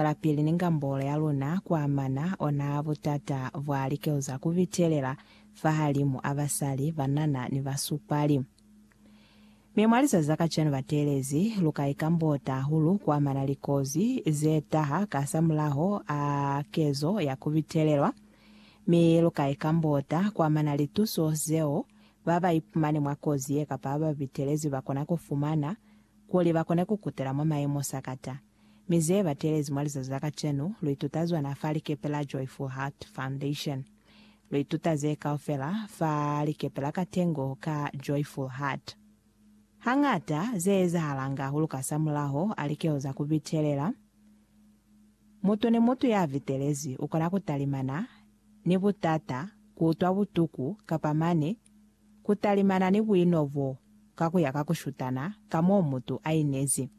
lapili ni ngambolo ya luna kuamana ona butata bwa likeo za kubitelela fahalimu a basali, banana, ni basupali. Mi mwa lizazi za kacwanu bateelezi luka ikambota hahulu kuamana li kozi zetaha kasamulaho a kezo ya kubitelelwa, mi luka ikambota kuamana li tuso zeo baba ipumani mwa kozi ye kapa bababitelezi bakona kufumana kuli bakone kukutela mwa mayemo sakata. Mi ze batelezi mwa lizazi la kacenu, lu ituta zona fa likepe la Joyful Heart Foundation. Lu ituta ze kaufela fa likepe la katengo ka Joyful Heart. Hañata, ze ezahalanga ku luka sa mulaho a likeho za ku bitelela. Mutu ni mutu ya bitelezi u kona ku talimana ni butata, ku utwa butuku, kapa mane ku talimana ni buino bo ka ku ya ka ku shutana ka m'o mutu a inezi.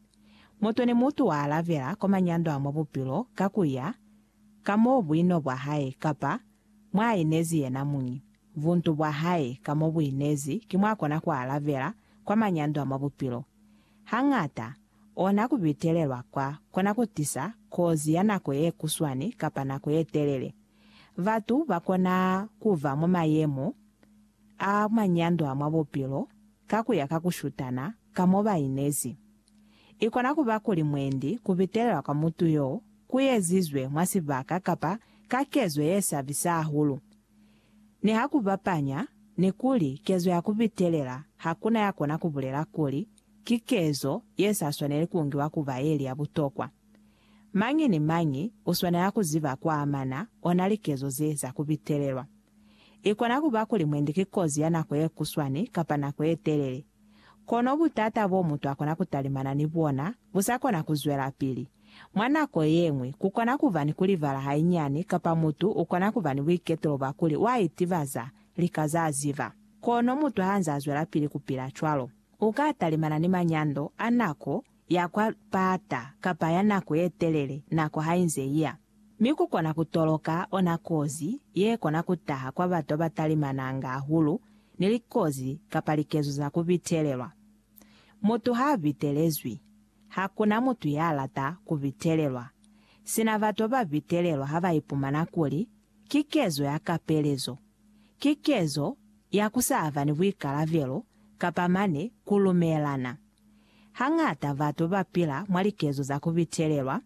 Mutu ni mutu wa alabela kwa manyando a mwa bupilo ka ku ya ka mo buino bwa hae kapa mwa inezi yena muñi, buntu bwa hae ka mo bu inezi ki mwa kona ku alabela kwa manyando a mwa bupilo. Hañata, ona ku bitelelwa kwa kona ku tisa kozi ya nako ye kuswani kapa nako ye telele. Batu ba kona ku ba mwa mayemo. a manyandwa mwa bupilo ka ku ya ka ku shutana ka mo ba inezi. I kona ku ba kuli mwendi ku bitelelwa kwa mutu y'o ku ezizwe mwa sibaka kapa ka kezo ye sabisa hahulu. Ni ha ku bapanya ni kuli kezo ya ku bitelela ha ku na ya kona ku bulela kuli ki kezo ye sa swaneli ku ngiwa ku ba ye li ya butokwa. Mañi ni mañi u swanela ku ziba ku amana ona likezo ze za ku bitelelwa. I kona ku ba kuli mwendi ki kozi ya nako ye kuswani kapa nako ye telele. Kono butata bo mutu a kona ku talimana ni bona bu sa kona ku zwelapili. Mwa nako ye ñwi, ku kona ku ba ni ku libala hainyani kapa mutu u kona ku ba ni buiketulo bwa kuli wa itibaza lika z'a ziba. Kono mutu ha nz'a zwelapili ku pila cwalo, u ka talimana ni manyando a nako ya kwa lipata kapa ya nako ye telele nako ha inze iya, mi ku kona ku toloka ona kozi ye kona ku taha kwa batu ba ba talimananga hahulu ni likozi kapa likezo za ku bitelelwa. Mutu ha a bitelezwi, ha ku na mutu ya lata ku bitelelwa, sina batu ba ba bitelelwa ha ba ipumana kuli ki kezo ya kapelezo, ki kezo ya ku sa ba ni buikalabelo kapa mane ku lumelana. Hañata batu ba pila mwa likezo za ku bitelelwa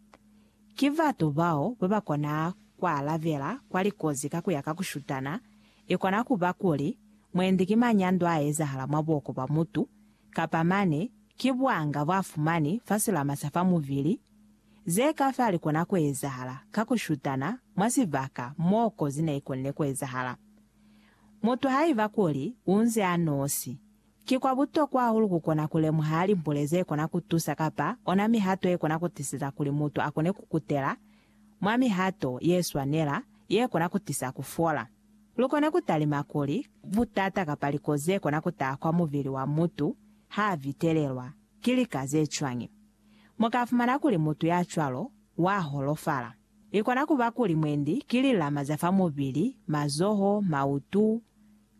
ki batu bao ba ba kona ku alabela kwa likozi ka ku ya ka ku shutana. I kona ku ba kuli mwendi ki manyando a ezahala mwa buoko bwa mutu, kapa mane ki buanga bwa fumani fa silama sa fa mubili. Ze ka fa li kona ku ezahala ka ku shutana mwa sibaka mo kozi ne i konile ku ezahala. Mutu haiba kuli u nze a nosi Ki kwa butokwa hahulu ku kona ku lemuha limbule ze kona ku tusa kapa ona mihato ye kona ku tiseza kuli mutu a kone ku kutela mwa mihato ye swanela ye kona ku tisa ku fola. Lu kone ku talima kuli butata kapa likozi ze kona ku taha kwa mubili wa mutu ha a vitelelwa ki lika ze cwañi. Mu ka fumana kuli mutu ya cwalo wa holofala. I kona ku ba kuli mwendi ki lilama za fa mubili, mazoho, mautu,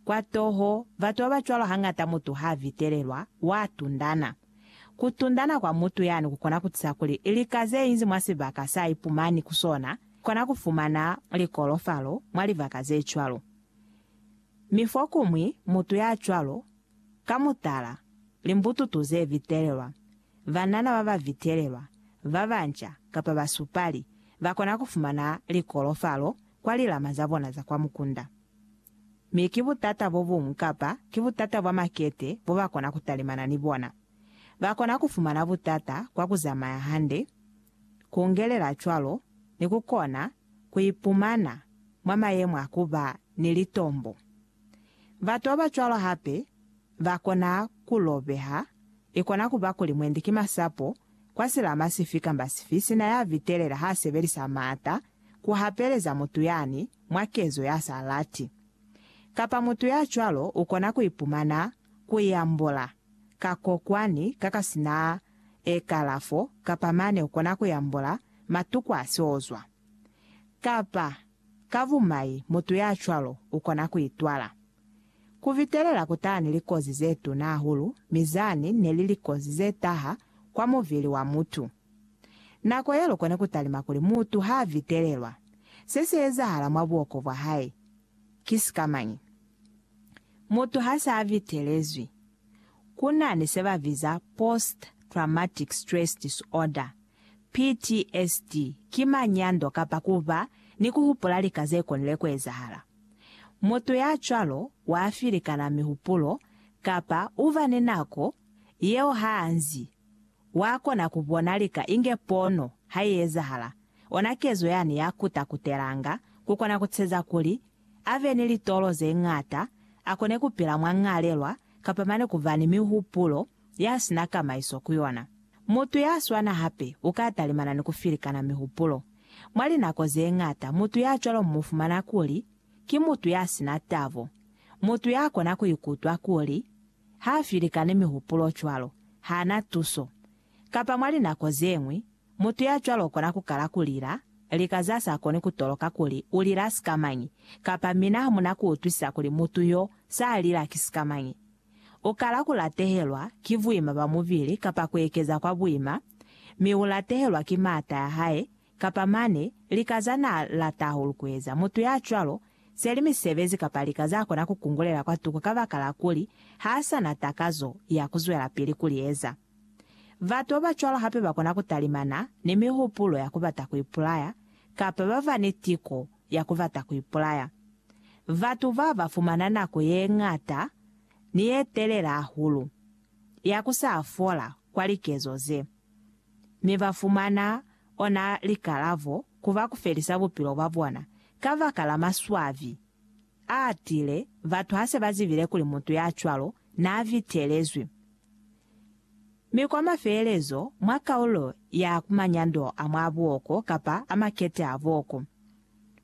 Kwa toho, batu babacwalo hañata mutu haavitelelwa, waatundana. Kutundana kwa mutu yani kukona kutisa kuli lika zeinzi mwa sibaka saaipumani ku sona kona kufumana likolofalo mwa libaka zecwalo. Mi fokuñwi mutu yacwalo, ka mutala, limbututu zevitelelwa, banana babavitelelwa, babanca, kapa basupali, bakona kufumana likolofalo kwa lilama zabona za kwa mukunda. Mi ki butata bo buñwi kapa ki butata bwa makete bo ba kona ku talimana ni bona. Ba kona ku fumana butata kwa ku zamaya hande, ku ngelela cwalo ni ku kona ku ipumana mwa mayemo a ku ba ni litombo. Batu ba ba cwalo hape ba kona ku lobeha, i kona ku ba kuli mwendi ki masapo kwa silama sifi kamba sifi sina ya vitelela ha sebelisa maata ku hapeleza mutu yani mwa kezo ya sa lati. Kapa mutu ya cwalo u kona ku ipumana ku i ambola ka kokwani ka ka si na e kalafo kapa mane u kona ku i ambola matuku a si ozwa. Kapa ka bumai mutu ya cwalo u kona ku itwala. Ku bitelela ku taha ni likozi ze tuna hahulu, mi zani ne li likozi ze taha kwa mubili wa mutu. Nako ye lukoni ku talima kuli mutu ha vitelelwa, se si ezahala mwa buoko bwa hae ki sikamañi? Mutu ha sa vitelezwi, ku na ni se ba biza post traumatic stress disorder, PTSD, ki manyando kapa ku ba ni ku hupula lika ze konile ku ezahala. Mutu ya cwalo wa filikana mihupulo kapa u ba ni nako yeo ha nzi Wa kona ku bona lika inge pono ha i ezahala, ona kezo yani ya kuta kutelanga ku kona ku tsheza kuli a be ni litolo ze ñata, a kone ku pila mwa ñalelwa, kapa mane ku ba ni mihupulo ya si na kamaiso ku yona. Mutu ya swana hape u ka talimana ni ku filikana mihupulo. Mwa linako ze ñata mutu ya cwalo mu mu fumana kuli ki mutu ya si na tabo, mutu ya kona ku ikutwa kuli Ha filikani mihupulo cwalo, hana tuso. Kapa mwa linako zeñwi, mutu ya cwalo ukona kukala kulila, lika za sa koni kutoloka kuli ulila sikamañi, kapa mina hamuna kuutwisisa kuli mutu yo sa lila ki sikamañi. Ukala kulatehelwa ki buima bwa mubili kapa kuekeza kwa buima, mi ulatehelwa ki maata ya hae Kapa mane, lika za n'a lata hahulu ku eza. Mutu ya cwalo, seli misebezi kapa lika za kona ku kungulela kwa tuku kabakala kuli h'a sa na takazo ya ku zwelapili ku li eza. Batu ba ba cwalo hape ba kona ku talimana ni mihupulo ya ku bata ku ipulaya kapa ba ba ni tiko ya ku bata ku ipulaya. Batu ba ba fumana nako ye ñata ni ye telela hahulu ya ku sa fola kwa likezo ze. Mi ba fumana ona likalabo ku ba ku felisa bupilo bwa bona kabaka la maswabi a tile. Batu ha se ba zibile kuli mutu ya cwalo n'a bitelezwi. Mi kwa mafelelezo, mwa kaulo ya ku manyando a mwa buoko kapa a makete a buoko,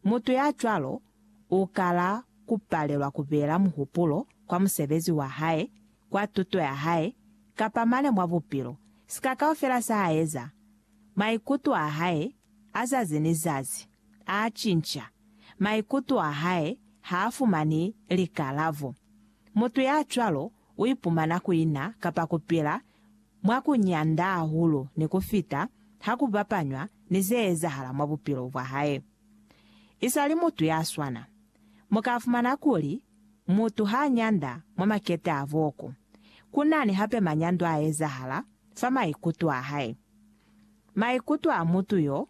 mutu ya cwalo u kala ku palelwa ku beela muhupulo kwa musebezi wa hae kwa tuto ya hae, kapa mane mwa bupilo, sika kaufela sa a eza, maikuto a hae a zazi ni zazi a cinca. Maikuto a hae ha a fumani likalabo. Mutu ya cwalo u ipumana ku ina kapa ku pila mwa ku nyanda hahulu ni ku fita ha ku bapanywa ni ze ezahala mwa bupilo bwa hae. I sa li mutu ya swana, mu ka fumana kuli Mutu ha nyanda mwa makete a boku, ku na ni hape manyando a ezahala fa maikuto a hae. Maikuto a mutu yo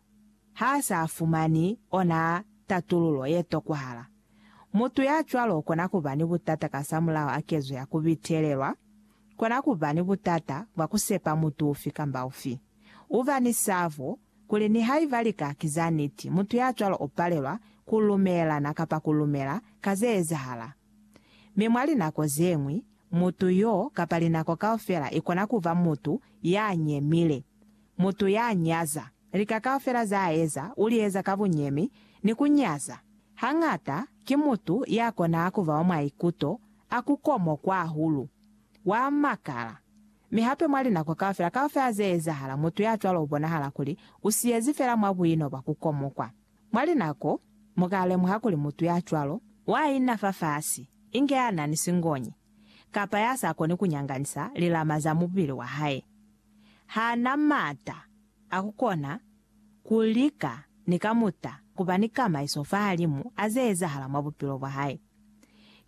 ha a sa fumani ona tatululo ye tokwahala, mutu ya cwalo u kona ku ba ni butata kasamulaho a kezo ya ku bitelelwa, kona ku ba ni butata bwa ku sepa mutu ufi kamba ufi, u ba ni sabo, kuli nihaiba lika ki za niti, mutu ya cwalo u palelwa ku lumelana kapa ku lumela ka ze ezahala. Mi mwa linako ze ñwi, mutu y'o, kapa linako kaufela, i kona ku ba mutu ya nyemile, mutu ya nyaza. Lika kaufela za eza, u li eza ka bunyemi ni ku nyaza. Hañata, ki mutu ya konaha ku ba wa mwaikuto a ku komokwa hahulu, wa makala, Mi hape mwa linako kaufela, kaufela ze ezahala, mutu ya cwalo u bonahala kuli u siyezi fela mwa buino bwa ku komokwa. Mwa linako, mu ka lemuha kuli mutu ya cwalo, wa ina fafasi, inge ya na ni singonyi, kapa ya sa koni ku nyanganisa lilama za mubili wa hae. Ha na m'ata a ku kona ku lika ni kamuta ku ba ni kamaiso fahalimu a ze ezahala mwa bupilo bwa hae.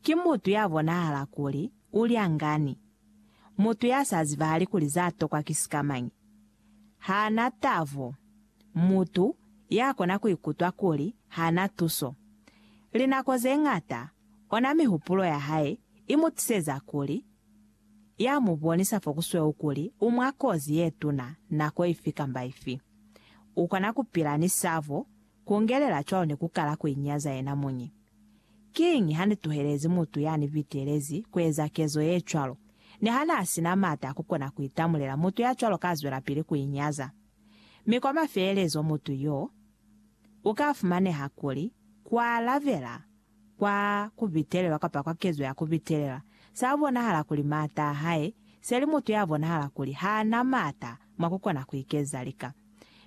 Ki mutu ya bonahala kuli u lyangani, Mutu ya sa zibahali kuli za tokwa ki sikamañi, ha na tabo. Mutu ya kona ku ikutwa kuli ha na tuso. Linako ze ñata, ona mihupulo ya hae i mu tiseza kuli ya mu bonisa fo ku sweu kuli u mwa kozi ye tuna nako ifi kamba ifi. U kona ku pila ni sabo, ku ngelela cwalo ni ku kala ku inyaza yena muñi. Kiñi hanituhelezi mutu yanibitelezi kueza kezo yecwalo? Niha naasina maata akukona kuitamulela, mutu yacwalo kaazwelapili kuinyaza. Mi kwa mafelelezo mutu yo ukaafumaneha kuli kualabela kwa kubitelelwa kapa kwa kezo ya kubitelelwa saabonahala kuli maata ahae seli mutu yabonahala kuli haana maata mwakukona kuikeza lika.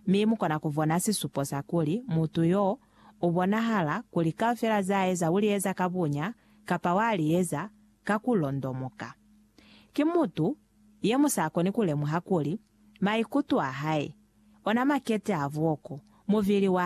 Mi mukona kubona sisupo sakuli mutu yo u bonahala kuli kaufela za eza u li eza ka bunya kapa wa li eza ka ku londomoka. Ki mutu ye mu sa koni ku lemuha kuli maikuto a hae, ona makete a buoko, mubili wa